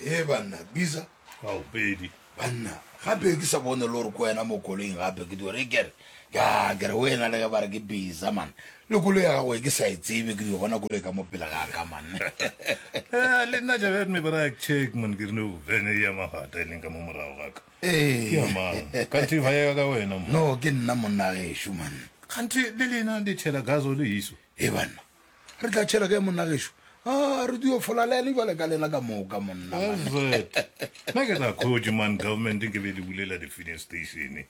e banna bisa ao pedi banna gape ke sa bone le gore ko wena mo koloing gape ke diore kere ka kere o ena le ge ba re ke bisa man le kolo ya gago e ke sa e tsebe ke dio bona kolo e ka mo pele ga ka man eh, le nna jabe me ba ra check man ke re no vene ya magata e leng ka mo morago ga ka ee ke amang kanthe ba ya ka wena no ke nna monna ge e shu man kanthe le lena le tshela gazo le iso Ee, banna, re tla tšhela kae monna gešo? A re dio folalene jwale ka lena ka moka monna. Alfred, na ke sa khotše man government nke be le bulela di-filling station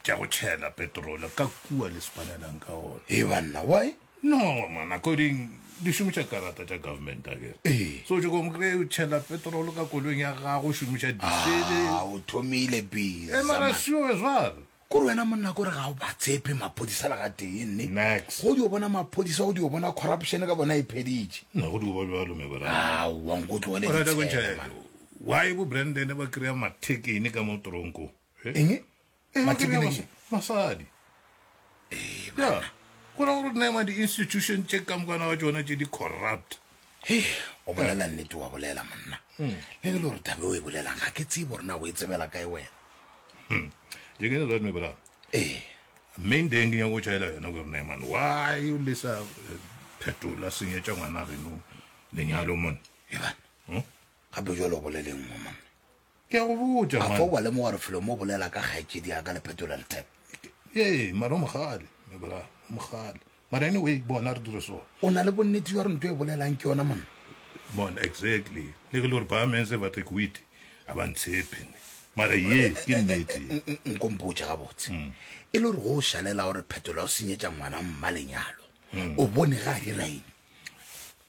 tša go tšhela petrole ka kua le spanelang ka gona. Ee, banna, why? No, man, according di šomiša karata tša government ake. Ee. So o tšoko mokre o tšhela petrole ka koloing ya gago o šomiša disele. Ah, o thomile biza. E mara sure jwale. Kore wena monna kore ga o ba tshepe maphodisa le ga tee nne Next. go dio bona maphodisa go dio bona corruption ka bona e pheditše Na go di goba bjalo me bra. aowa nko tlogele Alright, a ko ditshele, ntšhele. man. Why bo Brandon ba kry-a mathekene ka mo tronko? Eh? eng Eh, ba Mathekene kry-a ke- mas- masadi. Ya, go ra gore nema di-institution tše kamokana wa tšona tše di corrupt. o bolela nnete wa bolela monna hmm. le le gore tabe o e bolelang ga ke tsebo rena o e tsebela kae wena hmm. jekenelomebolaa ee main deng ke nyako chaela yona gore neman why o le sa eh, phetola senyetša ngwana reno lenyalo mone ebane hmm? gape jalo o boleleng mo monna Ke a go botša, A man. fo wa lemoga gore Felomo o bolela ka kgaetšedi ya ka le Petulant Tap? Ee, mara o mogale, me bra, o mogale. Mara anyway, bona re dire so. O na le bonnete bja gore nto e bolelang ke yona monna? Mon, exactly. Le ge le gore ba mense ba tekwiti, a ba ntshepe ne. Mara ye, ke nnete. N- n- Nko mpotše gabotse. E le gore go o šalela gore Phetola o senyetša ngwana mma lenyalo. O bone ga a dira eng?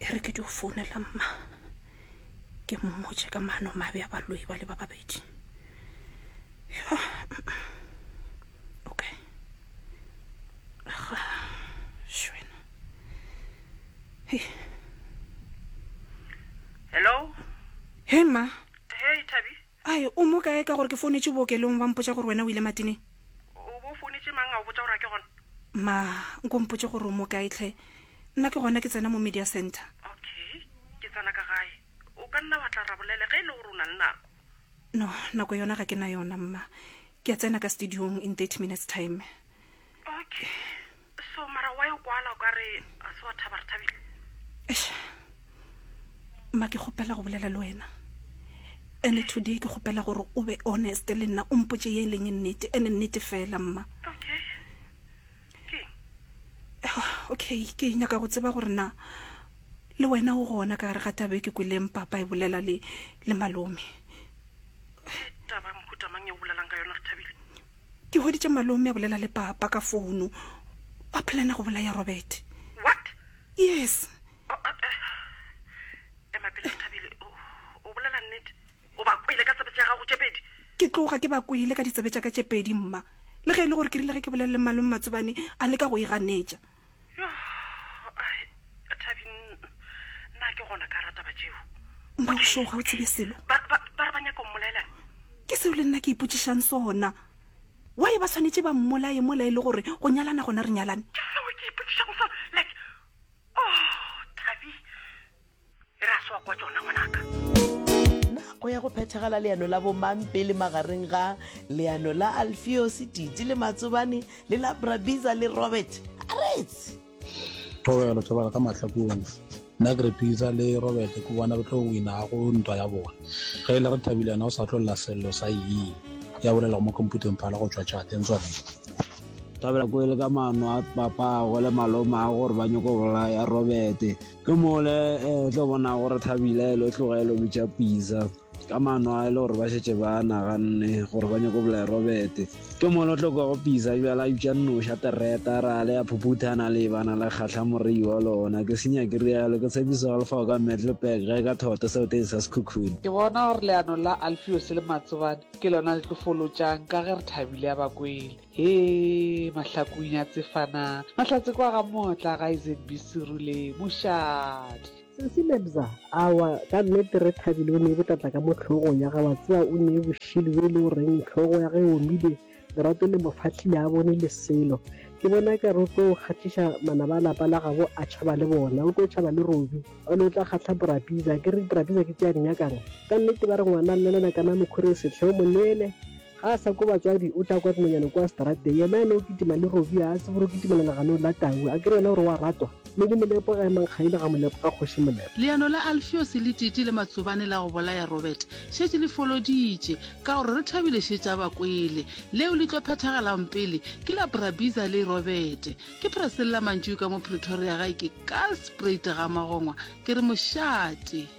E re ke dio founela mma ke mmotše ka maano mabe a baloi ba le ba babedi. Yo. Okay. Ga shwena. Hey. Hello. Hey ma. Hey Thabi. Ai, o mo kae ka gore ke founetše bookelong ba mpotša gore wena o ile matineng? O bo founetše mang a o botša gore a ke gona? Ma, nko mpotše gore o mo kae tlhe. Nna ke gona ke tsena mo Media Centre. Okay, ke tsena ka gae. O ka nna wa tla ra bolele ge e le gore o na le nako. No, nako yona ga ke na yona, Mma. Ke a tsena ka studiong in thirty minutes time. Okay, so mara wa e kwala o ka re ga se wa thaba re thabile. Eish. Ma ke kgopela go bolela le wena. Ene today ke kgopela gore o be honest le nna o mpotše ye e leng e nnete ene nnete fela mma. Okay. Ke Ah, Okay, ke nyaka go tseba gore na le wena o gona ka gare ga taba e ke kweleng papa e bolela le le malome. ke taba mohuta mang e o bolelang ka yona re thabile. Ke hweditše malome a bolela le papa ka founo. Ba plana go bolaya Robert. What? Yes. Oh, uh, uh, ema pele Nthabile. O, o bolela nnete? O ba kwele ka tsebe tša gago tše pedi? Ke tloga ke ba kwele ka ditsebe tša ka tše pedi, mma. Le ge e le gore ke rile ge ke bolelele malome Matsobane, a leka go e ganetša. Mmagošo ga o tsebe selo ke seo le nna ke ipotsišang sona wa e ba tshwanetse ba mmolaye mola e le gore go nyalana gona re nyalane e re a se wa kwa tsona ngwanaka nako ya go phethagala leano la bomampele magareng ga leano la alfios titi le matsobane le la brabiza le robert aretse thobelo thobela ka mahlakong nna ke re pisa le robert ke bona re tlo winago ntwa ya bona ge e le re thabile yena o sa tlolela selelo sa yee ya bolelago mo computeng phala go tswa tšateng tsone thabela ko e le ka mano a papago le maloma a gore ba nyoko bolaya robert Ke mole eh, o tlo bona gore thabile lo tloge lo bitša pizza ka mano a e le gore ba šetse ba naganne gore ba nyako bolae robete ke mole o tlo kwago pizza bjala a bitša nnoša tereta ra le ya phuphuthana le bana le kgatlha morei wa lona ke senya ke rialo ke tshepiso ga lefago ka metlepek ge ka thoto seo teng sa sekhukhune ke bona gore leano la alfiose le matsobane ke lona le tlo folotšang ka ge re thabile ya bakwele Hee mahlakong ya tsefana mahlatse kwa ga mootla ga ezb serule mošate. Sesi Lebza, awa ka nnete re thabile o nee botlatla ka mo hlogong ya ga wa tseba o nee boshili yo e le goreng hlogo ya ga e omile lerato le mofahli le a bone le selo ke bona e kare o tlo kgahliša manaba a lapa la gabo a tšhaba le bona o tlo tšhaba le Robi o le o tla kgahla Brabiza ke re Brabiza ke tše a di nyakang ka nnete ba re ngwana a llela kana mokhuri e sehle o mo neele Ga a sa kwa batswadi, o tla kwa dinonyane kua straateng. Yena a no kitima le Robbie, a a tsebe gore o kitimela leganong la tau. A ke re yena o re o a ratwa, mme le Molepo ga e mankgaile ga Molepo ka Kgoši Molepo. Leano la Alfiose le Titi le Matsobane la go bolaya Robert šetše le foloditše, ka gore re thabile šetše a ba kwele. Leo le tlo phethagalaong pele ke la Brabiza le Robert. Ke Presella Mantšui ka mo Pretoria, gae ke Karlspraet Gamagongwa, ke re mošate.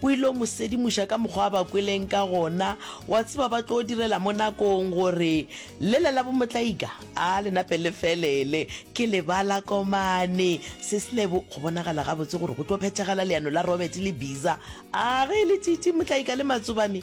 O il'o mo sedimoša ka mokgwa a ba kweleng ka gona, wa tseba ba tlo direla mo nakong, gore lele la bomotlaika a le nape le felele. Ke lebala komane, Seslebo, go bonagala gabotse gore go tlo phethagala leano la Robert le Biza. A ge e le tšitši, motlaika le matsobane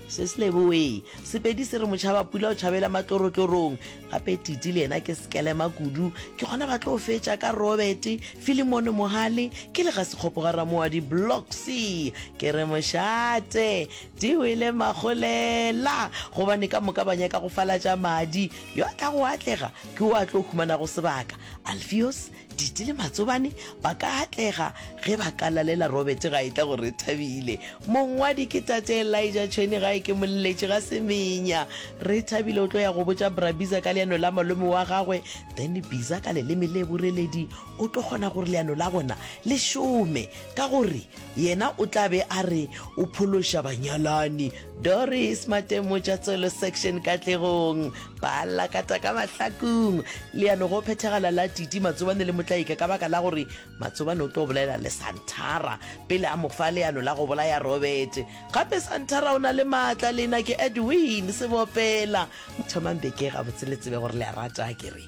Se se leboee. Sepedi se re motšhabapula o tšhabela matlorotloorong. Gape Titi le yena ke sekelema kudu. Ke gona ba tlo fetša ka Robert, Filimone Mohale, ke le ga Sekgopo ga Ramoadi, Bloxy. Ke re mošate. Di wele magolela. Gobane ka moka ba nyaka go falatša madi. Yo a tlago a atlega ke wo a tlo humanago sebaka. Alfios. Diti le Matsobane ba ka atlega ge ba ka lalela Robert gae tla go Rethabile. Mongwadi ke Tate Elijah Tshweni gae ke Molletši ga Semenya. Rethabile o tlo ya go botša Bra Biza ka leano la malome wa gagwe, then Biza ka leleme le boreledi o tlo kgona gore leano la bona le šome ka gore Yena o tla be a re o phološa banyalani. Doris Matemo Tšatsolo Section Katlegong ba lakata ka mahlakung. Leano go phethagala la Titi Matsobane le Motlaika ka baka la gore Matsobane o tlo bolela le Santhara pele a mo fa leano la go bolaya Robert. Gape Santhara o na le maatla. Lena ke Edwin Sebopela. Thomang beke gabotse le tsebe gore le a rata akere.